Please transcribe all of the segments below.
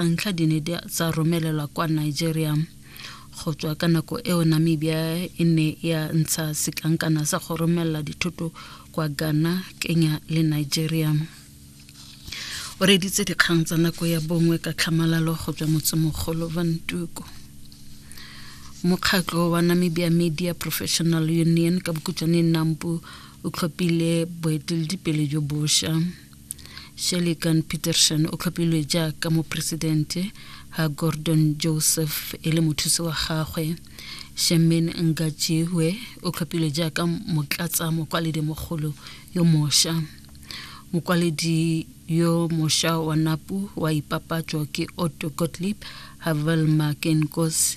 a ntlha di ne tsa romelelwa kwa nigeria go tswa ka nako eo namibia e ne ya ntsha setlankana sa go romelela dithoto kwa ghana kenya le nigeria o reditse dikgang tsa nako ya bongwe ka tlhamalalo go tswa motsemogolo vantuko mokgatlo wa namibia media professional union ka bokutswaneng nampo o tlhopile boeteledipele jo bošwa Shelikan Peterson o tlhophilwe jaaka mopresidente ha Gordon Joseph e le mothusi wa gagwe. Shemin Ngajiwe o tlhophilwe jaaka motlatsa mokwaledi mogolo yo mosha. Mokwaledi yo mosha wa NAPU wa ipapatso ke Otto Gottlieb ha Velma Kenkos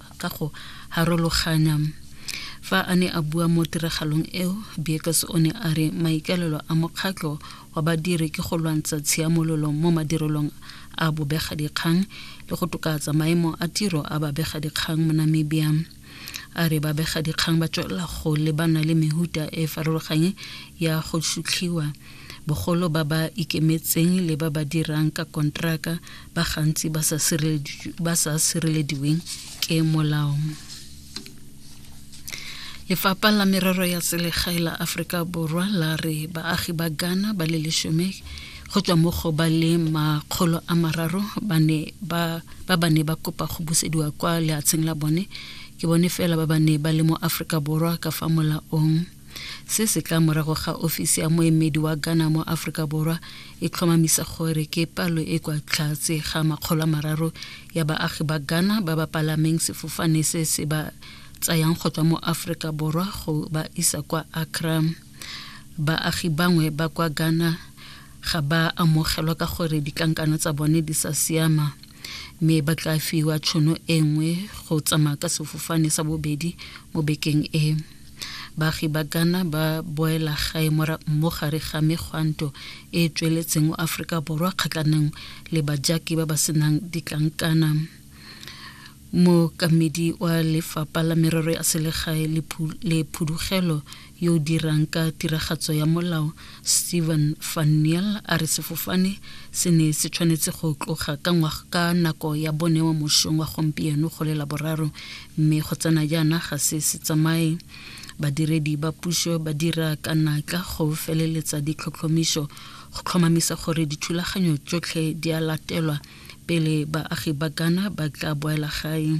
ka go harologanya. Fa a ne a bua mo tiragalong eo, Biekus o ne a re maikaelelo a mokgatlho wa badiri ke go lwantsha tshiamololo mo madirelong a bobegadikgang le go tokatsa maemo a tiro a babegadikgang mo Namibia. A re babegadikgang ba tswelela go lebana le mehuta e farologanye ya go shutlhiwa Bogolo ba ba ikemetseng le ba ba dirang ka kontraka ba gantsi ba sa sirelediweng ke molao. Lefapha la merero ya selegae la Aforika Borwa la re baagi ba Ghana ba le leshome go tswa mo go ba le makgolo a mararo ba ne ba ba ba ne ba kopa go busediwa kwa lehatsheng la bone ke bone fela ba ba ne ba le mo Aforika Borwa ka fa molaong Se se tla morago ga ofisi ya moemedi wa Ghana mo Aforika Borwa e tlhomamisa gore ke palo e kwa tlhatse ga makgolo a mararo ya baagi ba Ghana ba ba palameng sefofane se se ba tsayang go tswa mo Aforika Borwa go ba isa kwa Accra. Baagi bangwe ba kwa Ghana ga ba amogelwa ka gore ditlankana tsa bone di sa siama. mme ba tla fiwa tšhono e nngwe go tsamaya ka sefofane sa bobedi mo bekeng e baagi ba ghana ba boela gae mo gare ga megwanto e e tsweletseng o aforika borwa kgatlhanong le bajaki ba ba senang ditlankana mookamedi wa lefapha la merero ya selegae le phudugelo yo o dirang ka tiragatso ya molao Steven van Neel a re sefofane se ne se tshwanetse go tloga ka ngwaga ka nako ya bone wa mošong wa gompieno go lela boraro mme go tsena jaana ga se se tsamaye badiredi ba puso ba dira ka natla go feleletsa ditlhotlhomiso go tlhomamisa gore dithulaganyo tsotlhe di a latelwa pele baagi ba Ghana ba tla boela gae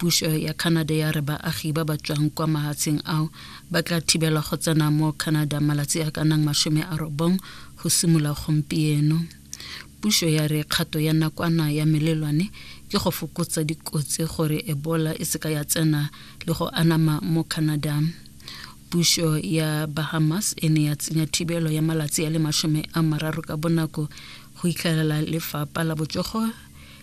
puso ya canada ya re baagi ba ba tswang kwa mahatsheng ao ba tla thibelwa go tsena mo canada malatsi a ka nang masome a robong go simolola gompieno puso ya re kgato ya nakwana ya melelwane ke go fokotsa dikotsi gore ebola e seka ya tsena le go anama mo canada puso ya bahamas e ne ya tsenya thibelo ya malatsi a le masome a mararo ka bonako go itlhelela lefapa la botsogo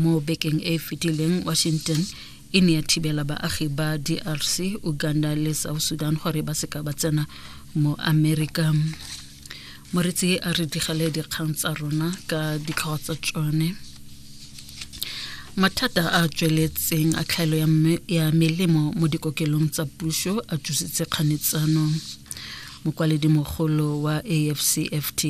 mo bekeng e e fetileng washington e ne ya thibela baagi ba drc uganda le south sudan gore ba seka ba tsena mo america moretsi a re digale dikgang tsa rona ka ditlhogo tsa tsone mathata a a tsweletseng a tlhaelo ya melemo mo dikokelong tsa puso a tsositse kganetsano mokwaledi mogolo wa afcfta